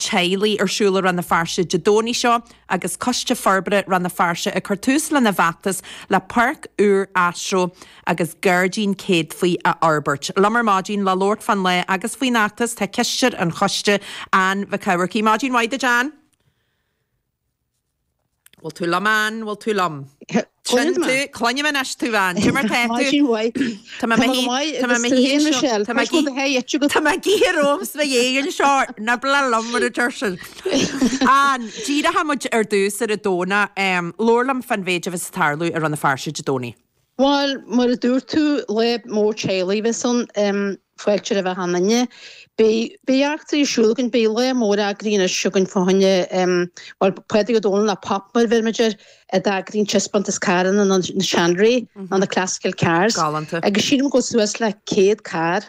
teaghlaigh ar siúl i Rann na Feirste Dé Domhnaigh seo agus Coiste Forbartha Rann na Feirste ag cur tús lena bhfeachtas le páirc úr astro agus gairdín céadfaí a fhorbairt. Liom ar maidin le labhairt fán lá agus faoin fheachtas tá Cisteoir an Choiste, Anne Mhic Eachmharcaigh. Maidin mhaith duit, Anne. Bhfuil tú liom, Ann? Bhfuil tú liom? Cluinim thú, cluinim anois thú, Ann. Caidé mar tá tú? Tá sí uaidh. Tá mé Tá mé go maith, agus tú féin, Michelle. Tá mé Cúis go do theith eite agat. Tá mé gíthir romham sna dhéagan seo, ná bac liom mar a deir siad. Ann, díreoidh muid ar dtús ar an Domhnach, labhair liom faoin mhéid a bheas ag tarlú i Rann na Feirste Dé Domhnaigh. Bhuel, mar a dúirt tú, lá mór teaghlaigh a bheas ann, fáilte roimh achan duine. Beidh eachtraí ar siúl againn, beidh lá mór eagraithe anois againn fá choinne, bhuel, Pádraig Ó Dónaill nó Pop mar a bheirimid air, a d'eagraíonn Taispeántas Carranna na Seanré, nó na Classical Cars, agus sílim go bhfuil suas le céad carr.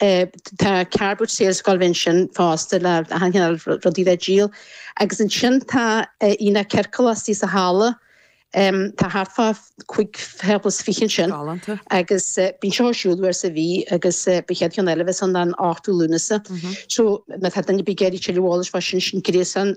Tá car boot sale sa scoil ansin fosta le achan chineál rudaí le díol. Agus ansin tá Aonach Ciorcal istigh sa halla. Tá thart fá chúig thábla is fiche ansin. Galánta. Agus bíonn sé ar siúl uair sa mhí agus beidh an chéad cheann eile a bheas ann ná an 8ú Lúnasa. So má tá duine ar bith ag iarraidh tuilleadh eolais fá sin, sin gréasán.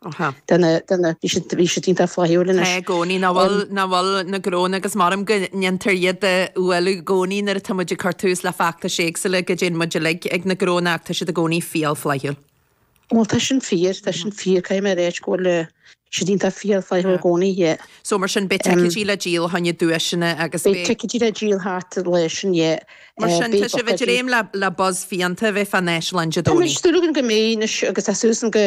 Bhí siad iontach flaithiúil linn. Tá i gcónaí. Nach bhfuil? Nach bhfuil na gnónna? Agus mothaím go ndéantar iad a bhualadh i gcónaí nuair atá muid ag cur tús le feachtais éagsúla, go dtéann muid uilig ag na gnónna, ach tá siad i gcónaí fial flaithiúil. Bhuel, tá sin fíor. Tá sin fíor. Caithfidh mé a rá go bhfuil siad iontach fial flaithiúil i gcónaí, yeah. So, mar sin, beidh ticeidí le díol, fá choinne duaiseanna agus beidh. Beidh ticeidí le díol thart ar an lá sin, yeah. Mar sin, tá sibh ag dréim le buzz fiánta a bheith fán Áislann Dé Domhnaigh. Tá muid ag súil go mbeidh anois agus tá suas go.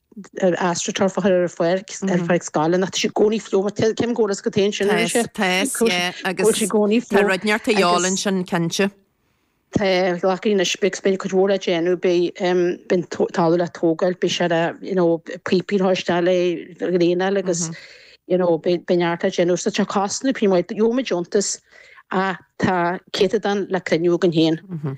ar astroturf a chur ar an pháirc, ar pháirc na scoile, nó tá sé i gcónaí fliuch, mar cé an gcóras go taon sin, is ea? Taos, taos, yeah, agus tá sé i gcónaí fliuch. Tá rud neart a dheáil ansin, cinnte. Tá, ghlacfaidh na sprioc, is beidh cuid mhór le déanamh, beidh an talamh le tógáil, beidh sé le, you know, píopaí ag teastáil le draenáil agus, you know, beidh neart le déanamh. So tá cosnú príomhoide, gheobhaimid deontas ach tá céatadán le cruinniú againn féin.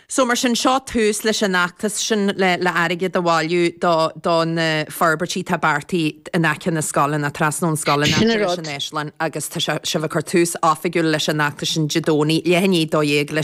So mar sin, seo tús leis an fheachtas sin le le airgead a bhailiú do do na forbairtí atá beartaithe in aice na scoile, nó trasna ón scoil in aice leis an Áislann agus tá sibh ag cur tús oifigiúil leis an fheachtas sin Dé Domhnaigh, leath i ndiaidh 12 leis